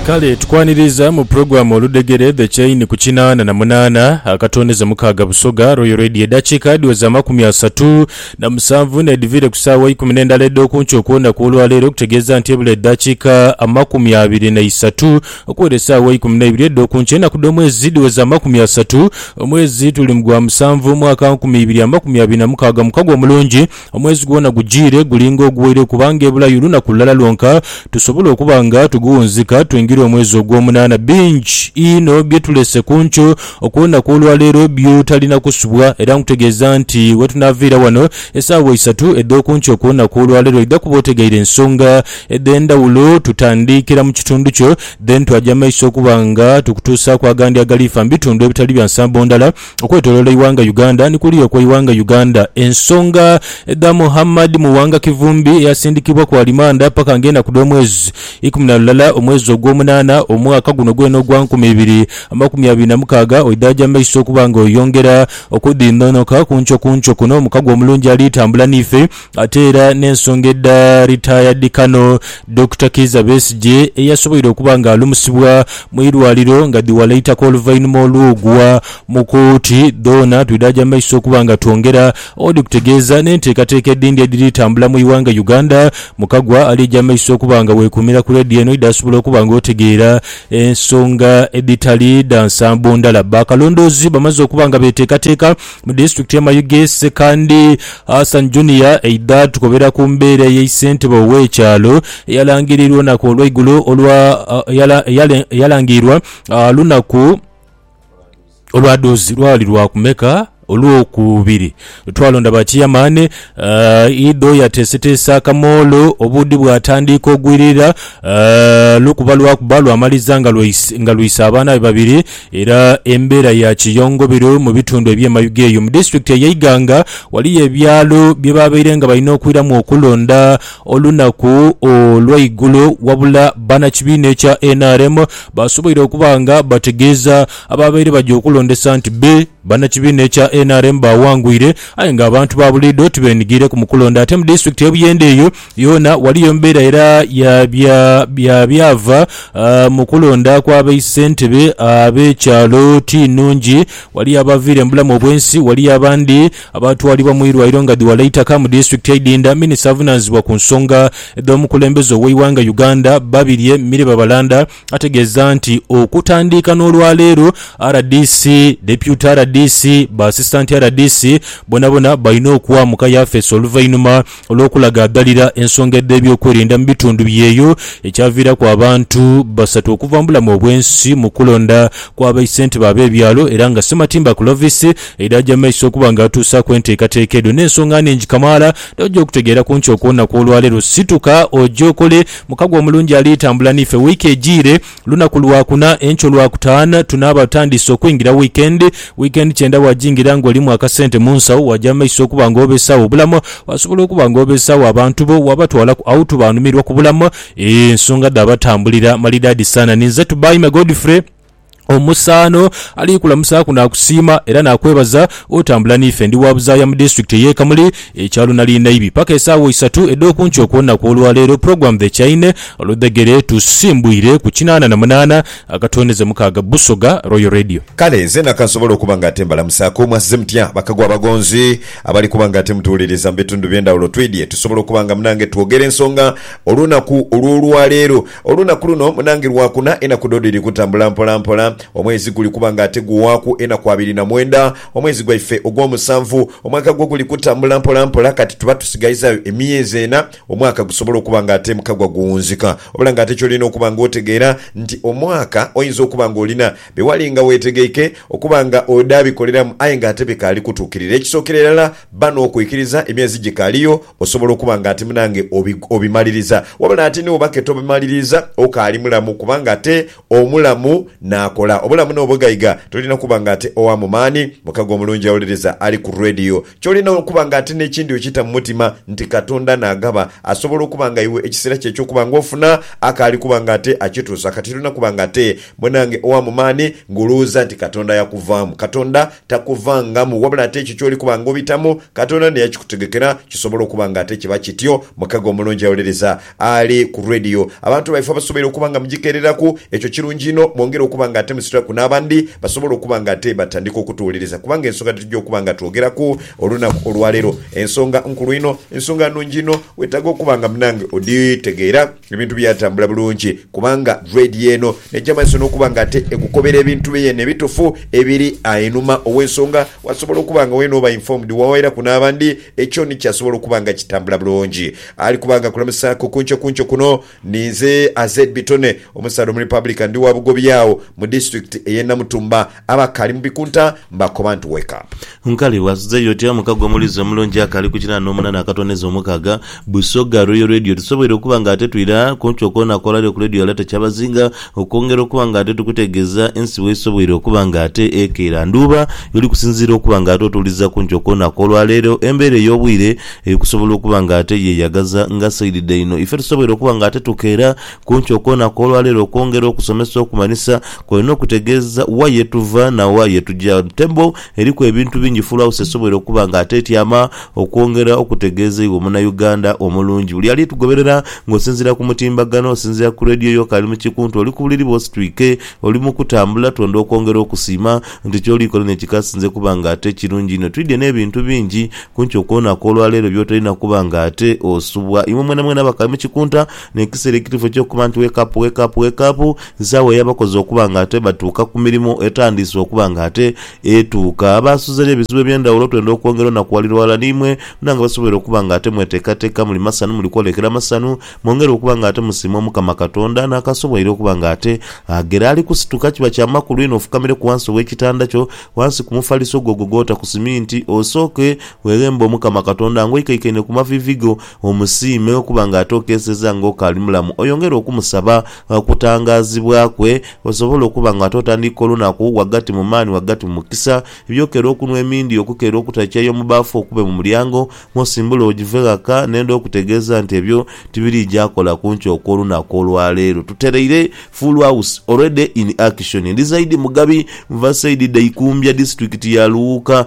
Kale tukwaniriza mu pulogulamu oludhegere The Chain ku kinaana na munaana akatondeza mukaaga Busoga Royal Radio edhakiika dhiweze amakumi asatu na musanvu n'edhiviire ku saawa eikumi n'endala edh'okunkyo okwonaku olwaleero okutegeeza nti ebula edhakiika amakumi abiri na isatu okuwera esaawa eikumi n'eibiri edh'okunkyo enaku dh'omwezi dhiweze amakumi asatu omwezi tuli mu gwa musanvu omwaka nkumi ibiri amakumi abiri na mukaaga mukagwa mulungi Omwezi gwona gujiire guli ng'oguwaire kubanga ebulayo lunaku lulala lwonka tusobole okuba nga tuguwunzika twingire omwezi ogw'omunaana. Bingi inho bye tulese ku nkyo okw'olunaku olwa leero byo talina kusubwa era nkutegeeza nti we tunaaviira wano esaawa isatu edh'oku nkyo ku lunaku olwa leero oidha kuba otegeire ensonga edh'endhawulo. Tutandiikira mu kitundu kyo then twaja maiso okuba nga tukutuusaaku agandi agaliifa mu bitundu ebitali bya nsambo ndala. Okwetolola eighanga Uganda ni kuliya okweighanga Uganda. Ensonga dha Muhammad Muwanga Kivumbi eyasindikibwa ku alimanda paka nga enaku dhomwezi ikumi na lulala omwezi ogwomunana omwaka guno gwena ogwa nkumi ibiri amakumi abiri na mukaaga oidhaja mumaiso okuba nga oyongera okudhindhonhoka kunco kunco kuno omukago omulungi alitambula niife Ate era n'ensonga edha Retired Colonel Dokita Kiiza Besigye eyasoboire okuba nga alumusibwa mu irwaliro nga dhiwalaitaka oluvainhuma olw'ogwa mu kooti dhoona twidhaja maiso okuba nga twongera odhikutegeeza n'enteekateeka edhindi edhiri tambula mu ighanga Uganda Mukagwa alija maiso okuba nga weekuumira ku Radio eno idhasobola okuba nga otegeera ensonga edhitali dha nsambo ndala. Bakalondoozi bamaze okuba nga beteekateeka Mu disitulikiti y'e Mayuge, Ssekandi Hassan Junior aidha tukobera ku mbeera eye ssentebe ow'ekyalo eyalangirirwa olunaku olw'eigulo olwa eyalangirirwa lunaku olwadoozi lwali lwa kumeka olwokubiri twalonda ba chiyamaani idho yateeseteese akamoolo obuudhi bwatandiika ogwirira lukuba lwakuba lwamaliza nga lwise abaana be babiri Era embeera ya kiyongobiru mu bitundu eby'e mayuge eyo. Mu disitulikiti eye Iganga waliyo ebyalo bye baabaire nga balina okwiramu okulonda olunaku olw'eigulo wabula bannakibiina ekya nrm baasoboire okuba nga bategeeza abaabaire baja okulondesa nti be Bannakibiina ekya nrm baawangwire aye nga abantu ba buliidho tibeenhigiireku mu kulonda ate mu disitulikiti y'e Buyende eyo yoona waliyo mbeera era ya byava mu kulonda kwa be ssentebe ab'ekyalo ti nnhungi. Waliyo abaaviira embulamu obwensi, waliyo abandi abaatwalibwa mu irwaire nga dhi wala eitaka mu disitulikiti eidhindha. Minisita avunaanizibwa ku nsonga edh'omukulembeze ow'eighanga Uganda Babirye Mire Babalanda, Ategeeza nti okutandiika n'olwaleero, rdc, Deputy rdc, ba Assistant rdc bonabona balina okwa mu ka yafeesi oluvainhuma olw'okulaga adhalira ensonga edh'ebyokwerinda mu bitundu byeyo ekyaviiraku abantu basatu okuva mu bulamu obwensi mu kulonda kwa ba ssentebe ab'ebyalo era nga Ssematimba Clovis yadhaja mu maiso okuba nga atuusaaku enteekateeka edho n'ensonga nnhingi kamaala dh'oja okutegeeraku nti okwonaku olwaleero situka oje okole Mukago omulungi ali tambula n'ife wiiki ejiire. Lunaku Lwakuna, enkya Olwakutaanu tunaaba tutandise okwingira wiikendi. Wiikendi kyenda waagingira ng'olimu akasente mu nsawo, waaja mu maiso okuba ng'obeesaagho obulamu. Waasobola okuba ng'obeesaagho abantu bo, waabatwalaku awutu baanumirwa ku bulamu. Eeh, nsonga dha batambulira malidaadi sana. Ninze Tubaime Godfrey. Omusaano ali kulamusaaku naakusiima era naakwebaza otambula n'ife. Ndi wa buzaaya mu disitulikiti ey'e Kamuli, ekyalo nali Naibi. Paka esaawa isatu edh'oku nkyo ku lunaku olwaleero, Program The Chaine oludhegere tusimbwire ku kinaana na munaana akatoonheze mukaaga Busoga Royal Radio. Kale zeena ka nsobole okuba nga ate mbalamusaaku. Mwasize mutya bakagwa abagonzi abali kuba nga ate mutuwuliriza mu bitundu eby'endhawulo? Twidhye tusobole okuba nga munange twogere ensonga olunaku olw'olwaleero. Olunaku luno munange Lwakuna, enaku dho dhiri kutambula mpola mpola, omwezi guli kuba nga ate guwaaku enaku abiri na mwenda. Omwezi gwaife ogw'omusanvu, omwaka gwo guli kutambula mpola mpola, kati tuba tusigaizaayo emyezi ena omwaka gusobole okuba nga ate mukagwa guwunzika. Wabula nga ate ky'olina okuba nga otegeera nti omwaka oyinza okuba nga olina bye wali nga weetegeike okuba nga odha bikoleramu aye nga ate bikaali kutuukirira. Ekisookera irala, bba n'okwikiriza emyezi gikaaliyo Osobola okuba nga ati munange obi, obimaliriza, wabula ate ni wobake tobimaliriza, okaali mulamu, kubanga ate omulamu n'akola. Obulamu n'obugaiga, tolina kuba nga ate owa mu maani. Mukago omulungi awuliriza ali ku radiyo. Ky'olina okuba nga ate n'ekindi okita mu mutima nti Katonda n'agaba. Asobola okuba nga iwe ekiseera kyo eky'okuba nga ofuna akaali kuba nga ate akituusa. Kati tolina kuba nga ate munange owa mu maani ng'olowooza nti Katonda yakuvaamu. Katonda Takuvangamu, wabula ate ekyo ky'oli kuba nga obitamu, Katonda naye akikutegekera. Kisobola okuba nga ate kiba kityo. Mukago omulungi awolereza ali ku radiyo. Abantu baife abasobeire okuba nga mugikeereraku, ekyo kirungi inho. Mwongere okuba nga ate musitulaku n'abandi basobole okuba nga ate batandika okutuwolereza, kubanga ensonga dhetujja okuba nga twogeraku olunaku olwaleero nsonga nkulu inho, nsonga nnungi inho. Weetaaga okuba nga munange odhitegeera. Ebintu byatambula bulungi kubanga Dread yeeno neja mumaiso nokuba nga ate egukobera ebintu bye yeena ebitufu ebiri einhuma owensonga wasobola okuba nga weena oba informed wawairaku nabandi ekyo ni kyasobola okuba nga kitambula bulungi. Ali kuba nga akulamusaku kunkyo kunkyo kuno ni nze Azed Bitone omusaadha omurepublican ndi wa Bugobya agho mu district eye Namutumba. Abakaali mu bikunta mbakoba nti Wake up! Nkaali bwasuzeyo oti amuka gwe omuliizi omulungi akaali ku kinaana omunana akatooneza omukaaga. Busoga Royal Radio tusoboire okuba nga ate twira kunkyo kwona kwolali oku Radio Alert kyabazinga okwongera okuba nga ate tukutegeeza ensi wesobwoire okuba nga ate ekeera ndhuuba yoli kusinziira okuba nga ate otuwuliza kunkyo kwona kwolwaleero embeera eyobwiire eri kusobola okuba nga ate yeyagaza nga saidi dhaino ife tusoboire okuba nga ate tukeera Kunkyo okwona kw'olwa leero okwongera okusomesa okumanhisa kwolina okutegeeza wa ye tuva na wa ye tuja. Table eriku ebintu bingi Full House esoboire okuba nga atetyama okwongera okutegeeza iwe Munauganda omulungi. Buli ali tugoberera ng'osinziira ku mutimbagano, osinziira ku radio yo k'ali mu kikuntu, oli ku buliri bwo ositwike, oli mu kutambula, twendha okwongera okusiima nti ky'oli kola n'ekyo k'asinze kuba nga ate kirungi inho. Twidhye n'ebintu bingi kunkyo kwona kw'olwa leero by'otolina kuba nga ate osubwa. Imwe mwenamwena abakali mu kikunta N'ekiseera ekituufu eky'okuba nti wake up, wake up, wake up, nsaawa ey'abakozi okuba nga ate batuuka ku mirimu etandiise okuba nga ate etuuka. Abaasuza eri ebizibu eby'endhawulo twenda okwongera onakuwalira ghalala n'imwe mwena nga basoboire okuba nga ate mweteekateeka muli masanu muli kwolekera masanu mwongere okuba nga ate musiima Omukama Katonda n'akasoboire okuba nga ate aghera ali kusituka. Kiba kya makulu inho ofukamireku ghansi ow'ekitanda kyo, ghansi ku mufaliso gwo ogwo gw'ota ku siminti, osooke weghembe Omukama Katonda ng'oikaikaine ku maviivi go. Omusiime okuba nga ate okeeseza nga okaali mulamu, oyongere okumusaba okutangaazibwa kwe, osobole okuba nga ate otandiika olunaku ghagati mu maani, ghagati mu mukisa. Eby'okeera okunhwa emindi, okukeera okuta chai omu baafu, okube mu mulyango mw'osimbula ojive ghaka, nenda okutegeeza nti ebyo tibiriija kola ku nkyo okw'olunaku olwa leero. Tutereire Full House already in action. Ndi Zaidi Mugabi, nva saidi dha Ikumbya, disitulikiti ya Luwuuka.